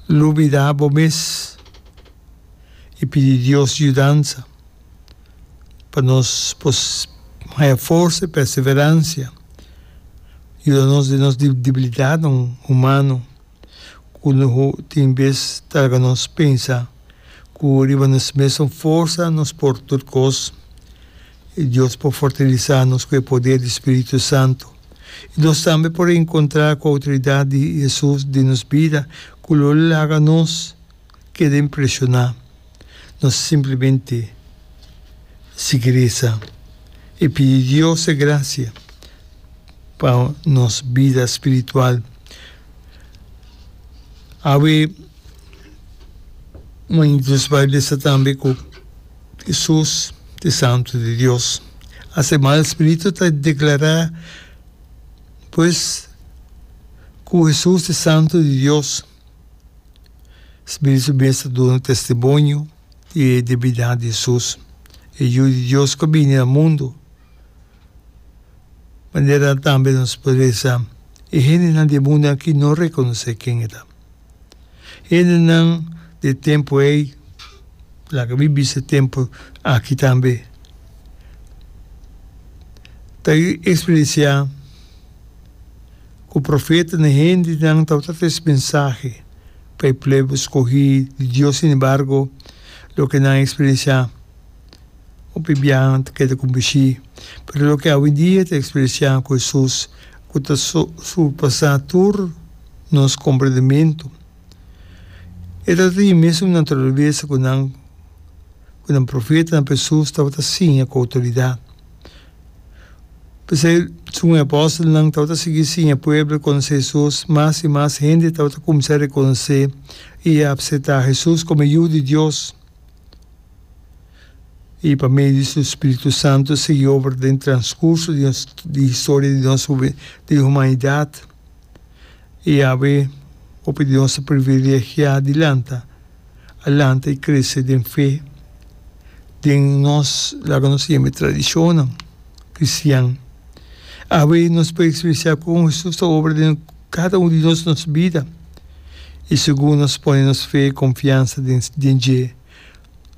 Lubida bo mes i pidi Dios yudansa pa nos por haya forsa i perseveransia. Yuda nos den nos debilidatnan humano ku tin bes ta laga nos pensa ku riba nos mesun forsa nos por tur kos. E Dios por fortalesá nos ku e poder di Spiritu Santu. I nos tambe por reenkontrá ku outoridat di Hesus den nos bida ku lo laga nos keda impreshoná. Nos simplemente sigui resa i pidi Dios se grasia pa nos bida spiritual. Awe, mañana nos bai bisa tambe ku. Hesus, e Santu di Dios, a se mal spiritu ta deklará, pues, ku Hesus e Santu di Dios. Spiritu mes ta duna testimonio di e divinidad di Hesus. E Yu di Dios ku a bini na mundu. Manera tambe nos por bisa e hendenan di e mundu aki no rekonosé ken e ta. E hendenan di e tempu ei, laga mi bisa e tempu aki tambe, ta eksperensiá ku profetanan i hendenan tabata tres mensahe pa e plebe skohí di Dios. Sin embargo, loke nan eksperensiá Hopi biaha ta keda con bishi, pero loke awidia ta experienciá cu Hesus, cu ta surpasá tur nos comprendementu. E ta tin e mesun naturalesa cu nan, cu nan profetanan pa Hesus tabata siña cu autoridad. P'esei, segun e apostelnan tabata sigui siña pueblo e conoce Hesus, mas i mas hende tabata cuminsa reconoce i apseta Hesus como e Yu di Dios. I pa medio di su spiritu santu e sigui obra den transkurso di nos di historia di nos di humanidat. I awe hopi di nos ta privilegiá di lanta alante i krese den fe den nos laga nos yeme tradishonnan kristian. Awe nos por ekspresiá kon Hesus ta obra den. Kada un di nos nos bida i segun nos pone nos fe i konfiansa den dje,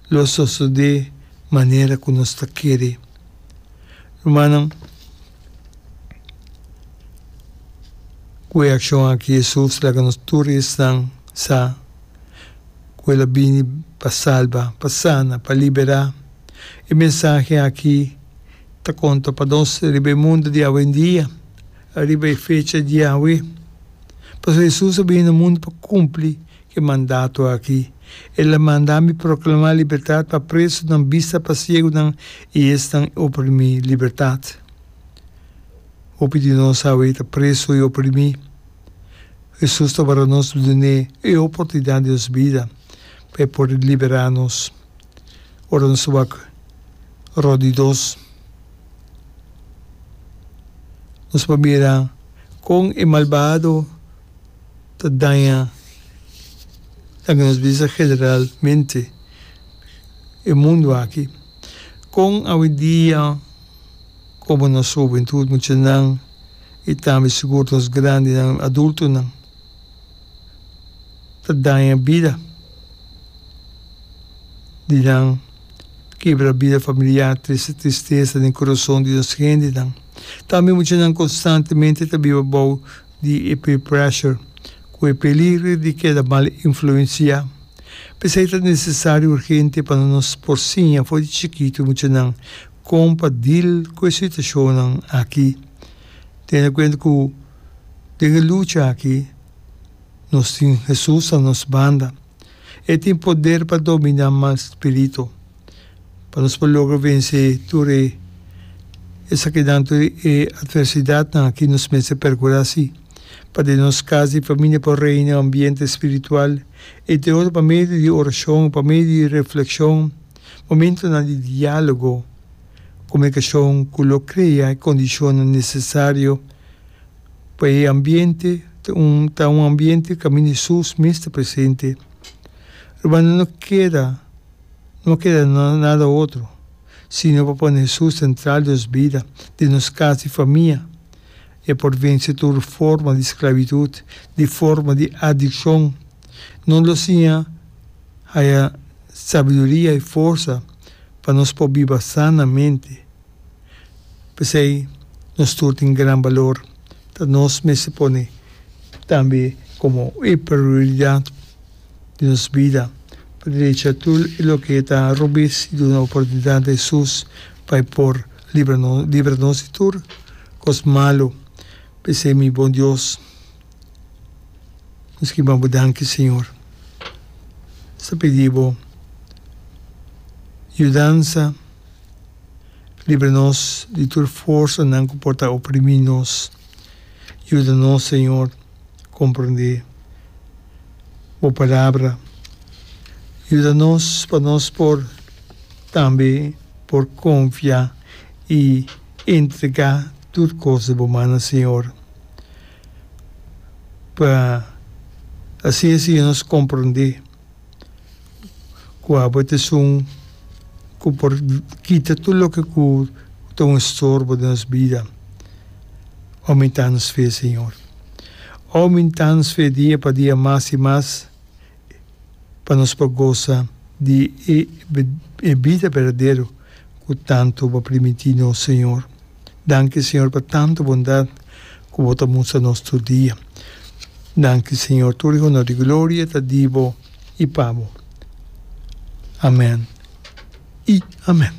lo sosodé manera ku nos ta kere. Rumannan, ku e akshon aki Hesus laga nos tur di esnan sa ku el a bini pa salba, pa sana, pa liberá. E mensahe aki ta konta pa nos riba e mundu di awendia. Ariba e fecha di Yahwe, pasobra Hesus a bini na mundu pa kumpli ku e mandato aki, El a manda mi proklamá libertat pa presunan, bista pa siegunan i esnan oprimí, libertat. Hopi di nos awe ta presu i oprimí. Hesus ta wòrdu nos dune e oportunidat di nos bida pa e por liberá nos. ora nos ta wak ròt di dos. Nos por mira kon e malbado ta daña loke nos bisa generalmente e mundu aki. Kon awidia komo nos hubentut, muchanan, i tambe sigur nos grandinan, adultonan, ta daña bida di nan, kebra bida familiar, trese tristesa den kurason di nos hendenan. Tambe muchanan konstantemente ta biba bou di e peer pressure, ku e peligro di keda mal influensiá. P'esei ta nesesario urgente pa nos por siña for di chikitu muchanan kon pa dil ku e situashonnan aki, teniendo kuenta ku. Den e lucha aki, nos tin Hesus na nos banda. E tin poder pa dominá mal spiritu, pa nos por logra vensé tur e esakinan, tur e atversidatnan aki. Nos mester perkurá si pa den nos kas di famia por reina e ambiente spiritual, entre otro pa medio di orashon, pa medio di reflekshon, momentunan di diálogo, komunikashon ku lo krea e kondishonnan nesesario. pa e ambiente ta un ta un ambiente cu ami di sus mes ta presente Hermano no keda no a keda na nada otro sino pa pone Hesus central di nos bida di nos cas di famia e por vence tur forma di sclavitud di forma di adiccion no lo siña haya sabiduria y forsa pa nos por biba sanamente. P'esei, nos tur tin gran balor, ta nos mester pone tambe komo e prioridat di nos bida pa derecha tur e loke ta robes i duna oportunidat na Hesus pa e por libra nos di tur kos malu. P'esei, mi bon Dios, nos kiba bo danki, Señor. Nos ta pidi bo yudansa. Libra nos di tur forsanan ku por ta oprimí nos. Yuda nos, señor, komprondé bo palabra. Yuda nos pa nos por tambe por konfia i entregá tur kos den bo mannan, señor. Pa asina, señor, nos komprondé. ku abo ta esun ku por kita tur loke ku ta un estorbo den nos bida. Omentá nos fe, Señor. Omentá nos fe dia pa dia mas i mas pa nos por gosa di e bida berdadero ku tantu bo primintí nos, Señor. Danki Señor pa tantu bondad cu bo ta mustra nos tur dia. Danki Señor, tur di honor di gloria ta di bo y pa bo. Amen y amen.